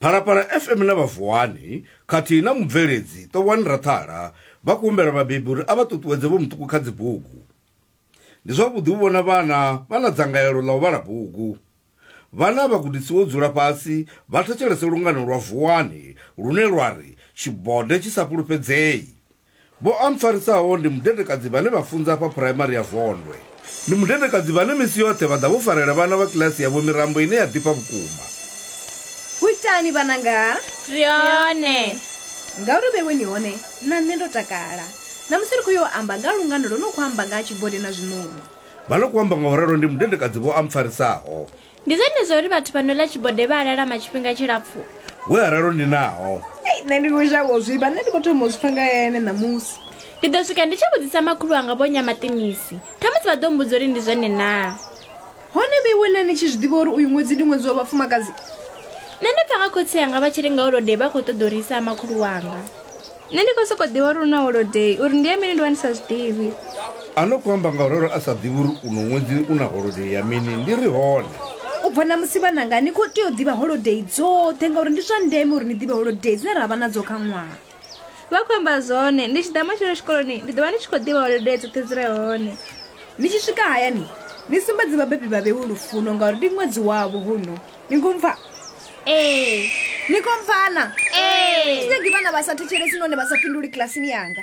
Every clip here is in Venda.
phalaphala fm na vhavuwani khathihi na mubveledzi ṱowani rathala vha khou humbela vhabebi uri a vha ṱuṱuwedze vho muṱuku kha dzibugu ndi zwavhuḓi u vhona vhana vha na dzangalelo ḽa u vhala bugu vhana vha gudisiwa u dzula fhasi vha thetshelese lungano lwa vuwani lune lwa ri tshibode tshi sa fhulufhedzei Vho ampfarisaho ndi mudedekadzi vhane vha funza afha Phuraimari ya Vondwe. Ndi mudedekadzi vhane misi yoṱhe vha ḓa vho farela vhana vha kiḽasi yavho mirambo ine ya ḓifha vhukuma. Ho itani vhananga? Ri hone. Ngauri vheiwe ni hone, na nṋe ndo takala. Ṋamusi ri khou yo amba nga ha lungano lwo no khou amba nga ha tshibode na zwiṋoni. Vha no khou amba nga u ralo ndi mudedekadzi vho ampfarisaho. Ndi zwone zwa uri vhathu vha no ḽa tshibode vha a lalama tshifhinga tshilapfu. Hu na ralo ndi naho. Ei, nṋe ndi khou shavha u zwi vha, nṋe ndi khou thoma u zwi pfa nga ya ene ṋamusi. Ndi ḓo swika ndi tshi vhudzisa makhulu wanga Vho Nyamaṱinisi, khamusi vha ḓo mmbudza uri ndi zwone naa. Hone vhe iwe na ni tshi zwi ḓivha uri uyu ṅwedzi ndi ṅwedzi wa vhafumakadzi? Nṋe ndo pfa nga khotsi anga vha tshi ri ngauri hodei vha khou ṱoḓa uri isa ha makhulu wanga. nṋe ndi khou sokou ḓivha uri u na holodei uri ndi ya mini ndi vha ndi sa zwi ḓivhi A no khou amba ngauralo a sa ḓivhi uri uno ṅwedzi u na holodei ya mini ndi ri hone u bva ṋamusi vhananga ni khou tea u ḓivha holodei dzoṱhe ngauri ndi zwa ndeme uri ni ḓivhe holodei dzine ra vha nadzo kha ṅwaha vha khou amba zwone ndi tshi ḓa matshelo tshikoloni ndi ḓo vha ndi tshi khou ḓivha holodei dzoṱhe dzi re hone ni tshi swika hayani ni sumbedze vhabebi vha vhewe lufuno ngauri ndi ṅwedzi wavho huno nikumva ee nikumvana ee sinegi vana vha sa thetshelesi none vha sa fhinduli kilasini yanga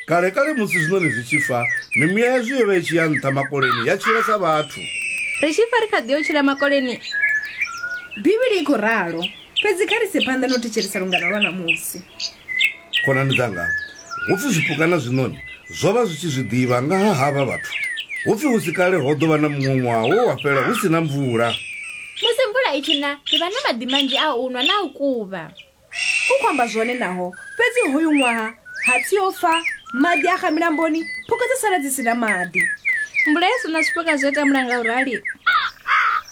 kale kale musi zwiṋoni zwi tshi fa mimuya yazwo yo vha i tshi ya nṱha makoleni ya tshila sa vhathu ri tshi fa ri kha ḓi yo tshila makoleni bivhili i khou ralo fhedzi kha ri se phanḓa no thetshelesa lungana lwa namusi Khonani dzanga, hu pfi zwipuka na zwiṋoni zwo vha zwi tshi zwi ḓivha nga ha havha vhathu. Hu pfi hu si kale ho ḓo vha na muṅwe ṅwaha we wa fhela hu si na mvula. Musi mvula i tshi na, ri vha na maḓi manzhi a u nwa na a u kuvha. U khou amba zwone naho, fhedzi hoyu ṅwaha hatsi o fa, maḓi a xa milamboni, phukha dza sala dzi si na maḓi. Mvula i sa na, zwipuka zwi a tambula nga u rali.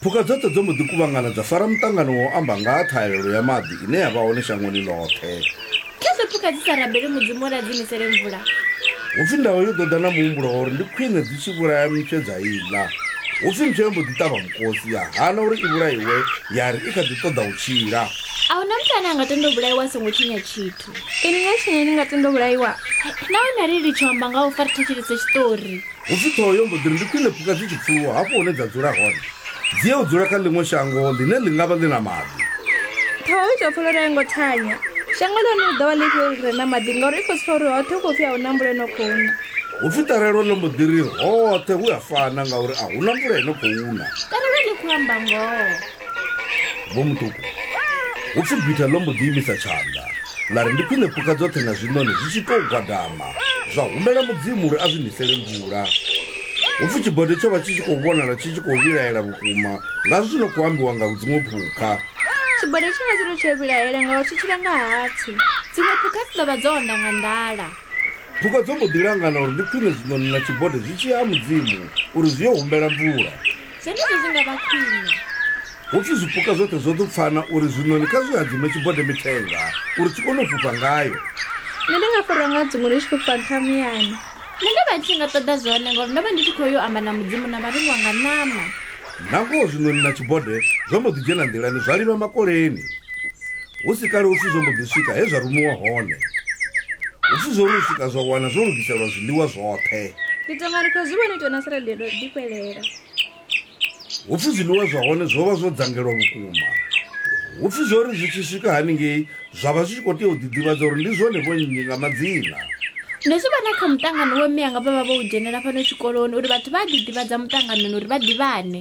Phukha dzoṱhe dzo mbo ḓi kuvhangana dza fara muṱangano wa u amba nga ha ṱhahelelo ya maḓi. ine ya vha hone shangoni ḽoṱhe. Musi phukha dzi sa rabeli Mudzimu uri a dzi nisele mvula. Hu pfi ndau yo ḓo ḓa na muhumbulo wa uri ndi khwine dzi tshi vhulaya mtshe dza i ḽa. Hu pfi mtshe yo mbo ḓi ṱavha mukosi, ya hana uri i vhulaiwe, ya ri i kha ḓi ṱoḓa u tshila. A hu na muthu ane a nga tenda u vhulaiwa a songo tshinya tshithu. Inwi nga tshinya ni nga tenda u vhulaiwa? Nahone ri litshe u amba nga ha u fa ri thetshelese tshiṱori. Hu pfi ṱhoho yo mbo ḓi ri, Ndi khwine phukha dzi tshi pfuluwa hafho hune dza dzula hone, dzi ye u dzula kha ḽiṅwe shango ḽine ḽi nga vha ḽi na maḓi. Ṱhoho i tou pfa lwone a i ngo thanya. Shango ḽa hone ḽi ḓo vha ḽifhio ḽi re na maḓi ngauri i khou zwi pfa uri hoṱhe hu khou pfi a hu na mvula i no khou na? Hu pfi ṱarelo ḽo mbo ḓi ri, Hoṱhe hu a fana ngauri a hu na mvula i no khou na. Ṱarelo ḽi khou amba ngoho. Vho Mutuku, hu pfi gwitha ḽo mbo ḓi imisa tshanḓa ḽa ri ndi khwine phukha dzoṱhe na zwiṋoni zwi tshi tou gwadama zwa humbela mudzimu uri a zwi nisele mvula. Hu pfi tshibode tsho vha tshi tshi khou vhonala tshi tshi khou vhilaela vhukuma ngazwo zwi no khou ambiwa nga dziṅwe phukha. Tshibode tsho vha tshi tou tshi a vhilaela ngauri tshi tshila nga hatsi. Dziṅwe phukha dzi ḓo vha dzo onda nga nḓala. Phukha dzo mbo ḓi langana uri ndi khwine zwiṋoni na tshibode zwi tshi ya ha mudzimu uri zwi yo humbela mvula. zwenezwo zwi nga vha khwine ho pfi zwipuka zwoṱhe zwo ḓo pfana uri zwiṋoni kha zwi hadzime tshibode mithenga uri tshi kone u fhufha ngayo nṋe ndi nga fhura nga dziṅwe ndi tshi fhufha nṱha muyani nṋe ndo vha ndi tshi nga ṱoḓa zwone ngauri ndo vha ndi tshi khou yo amba na mudzimu na vharengiwa nga ṋama nangoho zwiṋoni na tshibode zwo mbo ḓi dzhena nḓilani zwa livha makoleni Hu si kale upfi zwo mbo ḓi swika he zwa rumiwa hone. Upfi zwo ri swika zwa wana zwo lugiselwa zwiḽiwa zwoṱhe. Ndi tonga ri khou zwi vhona itiwa na sa radio ndo ḓi fhelela. Upfi zwiḽiwa zwa hone zwo vha zwo dzangelwa vhukuma. Upfi zwo ri zwi tshi swika haningei zwa vha zwi tshi khou tea u ḓiḓivhadza uri ndi zwone vho nnyi nga madzina. Ndo zwi vhona kha muṱangano we mme anga vha vha vho u dzhenela fhano tshikoloni uri vhathu vha a ḓiḓivhadza muṱanganoni uri vha ḓivhane.